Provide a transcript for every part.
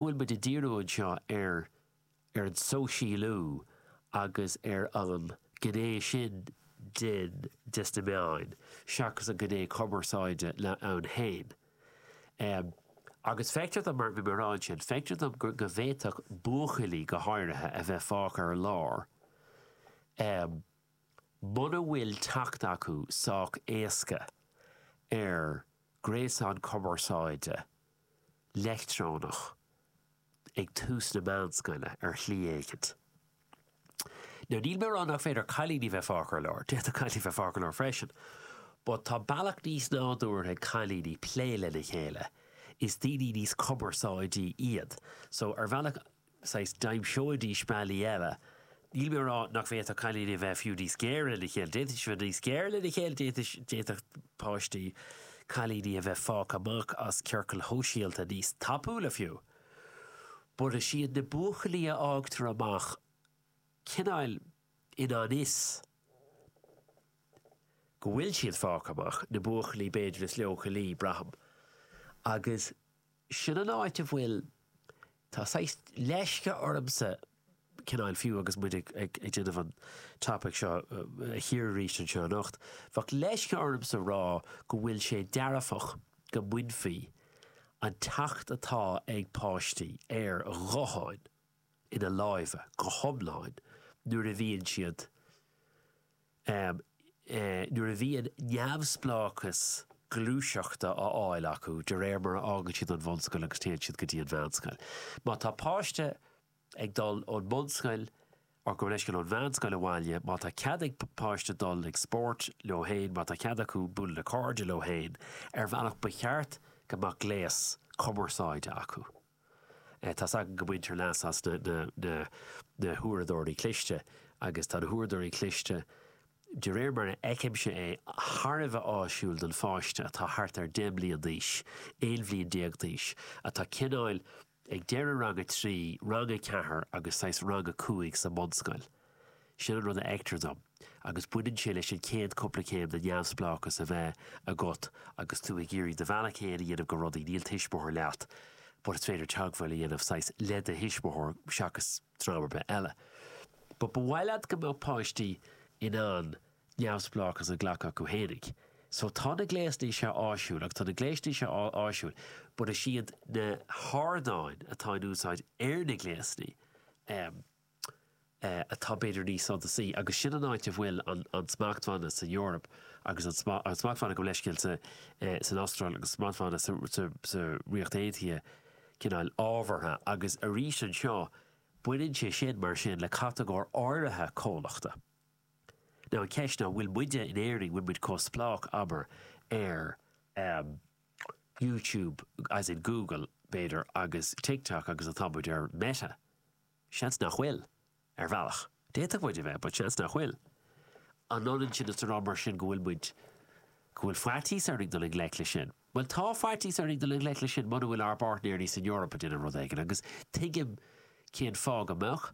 bhfuil muid ag díriú anseo ar ar an sóisialú agus ar an gné sin den desna meáin seachas an gné cumarsáide ann féin. Agus feictear dom, mar bhí mé a rá ansin, feictear dom go go bhféadfadh buachaillí go háirithe a bheith fágtha ar lár muna bhfuil teacht acu sách éasca ar gréasán cumarsáide leictreonach ag tús na meánscoile ar shlí éigin. Now níl mé ag rá nach féidir cailíní bheith fágtha ar lár, d'fhéadfadh cailíní bheith fágtha ar lár freisin, but tá bealach níos nádúrtha ag cailíní plé lena chéile, is daoine níos cumarsáidí iad, so ar bhealach saghas d'aimseoidís bealaí eile. Níl mé ag rá nach bhféadfadh cailíní a bheith fiú níos géire lena chéile, d'fhéadfadh siad bheith níos géire lena chéile, d'fhéadfadh, d'fhéadfadh páistí, cailíní a bheith fágtha amach as ciorcail shóisialta níos tapúla fiú. But is iad na buachaillí a fhágtar amach cineáil i ngan fhios go bhfuil siad fágtha amach, na buachaillí b'fhéidir is leochailí, braithim. Agus. Sin an áit a bhfuil, tá saghas leisce ormsa cineáil fiú agus muid ag déanamh an topaic seo a chíoradh arís anseo anocht, bheadh leisce ormsa rá go bhfuil sé dearfach go mbainfí an teacht atá ag páistí ar ghutháin ina lámha go hiomlán nuair a bhíonn siad nuair a bhíonn neamhspleáchas gluaiseachta á fháil acu de réir mar a fhágann siad an bhunscoil agus téann siad go dtí an mheánscoil. Má tá páiste ag dul ón mbunscoil gabh mo leithscéal, ón mheánscoil abhaile, má tá cead ag páiste dul ag spórt leo féin, má tá cead acu bualadh le cairde leo féin, ar bhealach ba cheart go mbeadh gléas cumarsáide acu. Tá's againn go mbaintear leas as na huaireadóirí cliste, agus tá na huaireadóirí cliste, de réir mar a fheicimse é, thar a bheith áisiúil don pháiste atá thart ar 10 mbliain d'aois, 11 bhliain d'aois, atá cineáil ag deireadh rang a trí, rang a ceathair agus saghas rang a cúig sa mbunscoil. Sin an rud a fheictear dom, agus baineann sé leis an chéad cúpla céim de neamhspleáchas a bheith agat agus tú ag iarraidh do bhealach fhéin a dhéanamh go rudaí, níl tuismitheoir leat but is féidir teagmháil a dhéanamh saghas le do thuismitheoir seachas dream ar bith eile. But ba mhaith leat go mbeadh páistí in ann neamhspleáchas a ghlacadh acu fhéinig. So tá na gléasanna seo áisiúil agus tá na gléasanna seo áisiúil but is iad na hardáin atá in úsáid ar na gléasanna, em, atá b'fhéidir níos suntasaí, agus sin an áit a bhfuil an smachtbhanna san Eoraip agus an smachtbhanna gabh mo leithscéal san Astráil agus smachtbhanna sa Ríocht Aontaithe cineál ábhartha, agus arís anseo baineann sé sin mar sin le catagóir áirithe comhlachta. Now an ceist ná, bhfuil muide in Éirinn, bhfuil muid chomh spleách, abair, ar YouTube, as in Google, b'fhéidir, agus TikTok agus atá muid ar Meta? Seans nach bhfuil. Ar bhealach, d'fhéadfadh muid a bheith, but seans nach bhfuil. An ionann sin is a rá, mar sin, go bhfuil muid, go bhfuil faitíos orainn dul i ngleic leis sin? Bhuel, tá faitíos orainn dul i ngleic leis sin muna bhfuil ár bpáirtnéirí san Eoraip ag déanamh rud éigin, agus tuigim cén fáth go mbeadh,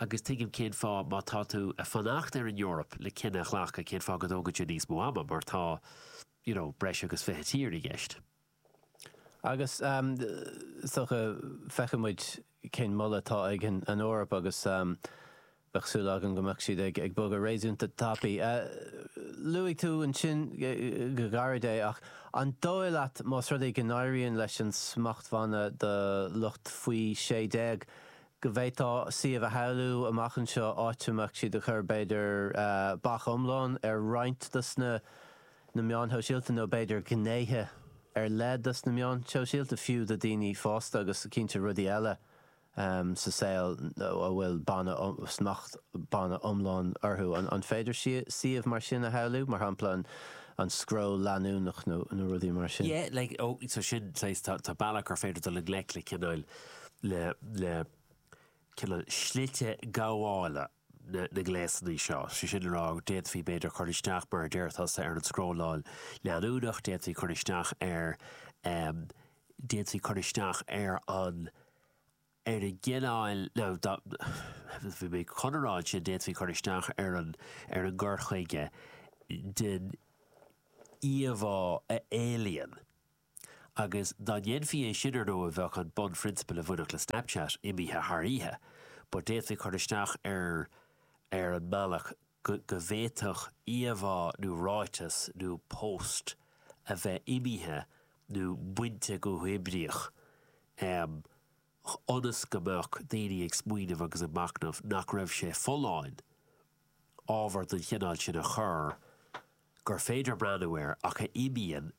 agus tuigim cén fáth, má tá tú ag fanacht ar an Eoraip le cinneadh a ghlacadh, cén fáth go dtógann sé níos mó ama, mar tá, you know, breis agus fiche tír i gceist. Agus is dócha, feicfidh muid cén moladh atá ag an Eoraip agus bheadh súil agam go mbeadh siad ag bogadh réasúnta tapaidh. Luaigh tú ansin go gairid é ach an dóigh leat más rud é go n-éiríonn leis an smachtbhanna do lucht faoi 16 go bhféadfá suíomh a shamhlú amach anseo áit a mbeadh siad ag cur b'fhéidir bac iomlán ar roinnt dos na na meáin shóisialta nó b'fhéidir gnéithe ar leith dos na meáin shóisialta fiú do daoine fásta tá cinnte rudaí eile sa saol a bhfuil banna, smacht banna iomlán orthu. An féidir suíomh mar sin a shamhlú, mar shampla an scroll leanúnach nó rudaí mar sin? Yeah, like, oh, so sin, saghas, tá, tá bealach gur féidir dul i ngleic le cineál, le, le cineál slite gabhála. na ngléasanna seo. Sé sin le rá go d'fhéadfaí b'fhéidir cur isteach, mar a deir tusa, ar an scrolláil leanúnach, d'fhéadfaí cur isteach ar, em, d'fhéadfaí cur isteach ar an, ar an gcineál, níl mé chun a rá ansin, d'fhéadfaí cur isteach ar an, ar an gcur chuige den íomhá a éalaíonn Agus dá ndéanfaí é sin ar ndóigh bheadh an bunphrionsabal a bhainfeadh le Snapchat imithe thar oíche. But d'fhéadfaí cur isteach ar, ar an mbealach go bhféadfadh íomhá nó ráiteas nó post a bheith imithe nó bainte go huathoibríoch ionas go mbeadh daoine ag smaoineamh agus ag machnamh nach raibh sé folláin ábhar den chineál sin a chur gur féidir breathnú air ach a imíonn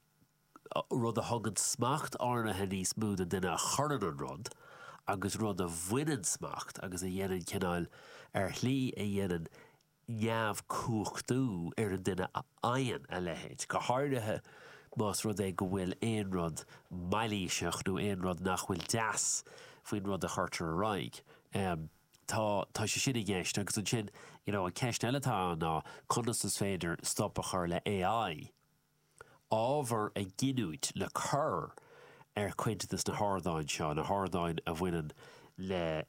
rud a thugann smacht áirnithe níos mó don duine a chuireann an rud, agus rud a bhaineann smacht agus a dhéanann cineál, ar shlí a dhéanann neamhchumhachtú ar an duine a fhaigheann a leithéid, go háirithe más rud é go bhfuil aon rud mailíseach nó aon rud nach bhfuil deas faoin rud a chuirtear ar aghaidh. Tá tá sé sin i gceist, agus ansin, you know, an ceist eile atá ann ná conas is féidir stop a chur le AI, ábhar a ghiniúint le cur ar chuid de na hardáin seo, na hardáin a bhaineann le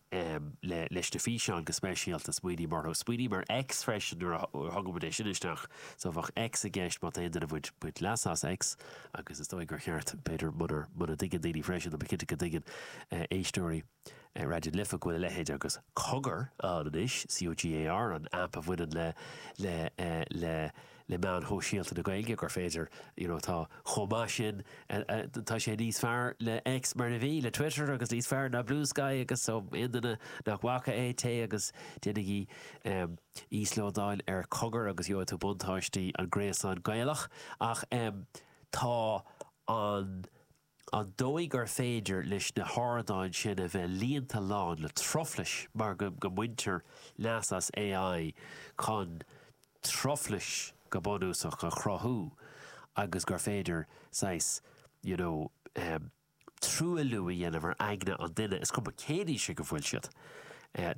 le leis na físeáin go speisialta. Smaoiním orthu. Smaoiním ar X freisin nuair a thugaimid é sin isteach. So bheadh X i gceist má tá aon duine ag baint baint leas as X agus is dóigh gur cheart b'fhéidir munar muna dtuigeann daoine freisin, tá mé cinnte go dtuigeann éisteoirí, ar Raidió Life go bhfuil a leithéid agus Cogar ann anois, C-O-G-A-R, an aip a bhaineann le le le le meáin shóisialta na Gaeilge, gur féidir you know tá chomh maith sin tá sé níos fearr le X mar a bhí, le Twitter agus níos fearr ná Bluesky agus so aon duine nach bhfaca é, téigh agus déanaigí íoslódáil ar Cogar agus gheobhaidh tú buntáistí an gréasáin Gaelach ach tá an. an dóigh gur féidir leis na hardáin sin a bheith líonta lán le truflais mar go mbaintear leas as AI chun truflais go bunúsach a chruthú agus gur féidir saghas you know truailliú a dhéanamh ar aigne an duine, is cuma cén aois ag a bhfuil siad.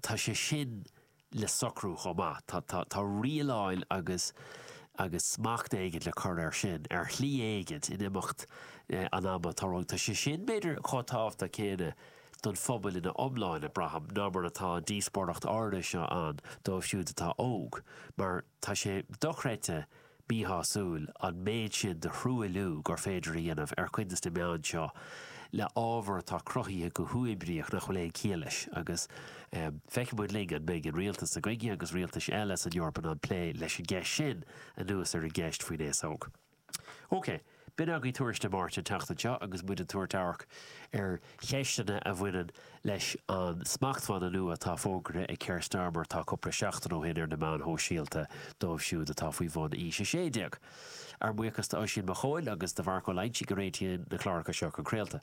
Tá sé sin. le socrú chomh maith. Tá tá rialáil agus agus smacht éigint le cur air sin, ar shlí éigint, in imeacht an ama. Tá rud, tá sé sin b'fhéidir chomh tábhachtach céanna don phobail ina iomláine, braithim, ná mar atá an díospóireacht áirithe seo ann dóibh siúd atá óg, mar tá sé dochreidte, míshásúil an méid sin de thruailliú gur féidir a dhéanamh ar chuid de na meáin seo le ábhar atá cruthaithe go huathoibríoch nach bhfuil aon chiall leis agus feicfidh muid linn an mbeidh an rialtas seo againne agus rialtais eile san Eoraip in ann plé leis an gceist sin anuas ar an gceist faoin aos óg. Ok. B'in agaibh Tuairisc na Máirte an tseachtain seo agus muid ag tabhairt amharc ar cheisteanna a bhaineann leis an smachtbhanna nua atá fógartha ag Keir Starmer tá cupla seachtain ó shin ar na meáin shóisialta dóibh siúd atá faoi bhun aois 16. Ár mbuíochas d'Oisín Mac Chóil agus do Mharc Ó Loinsigh a réitíonn na cláracha seo chun craolta.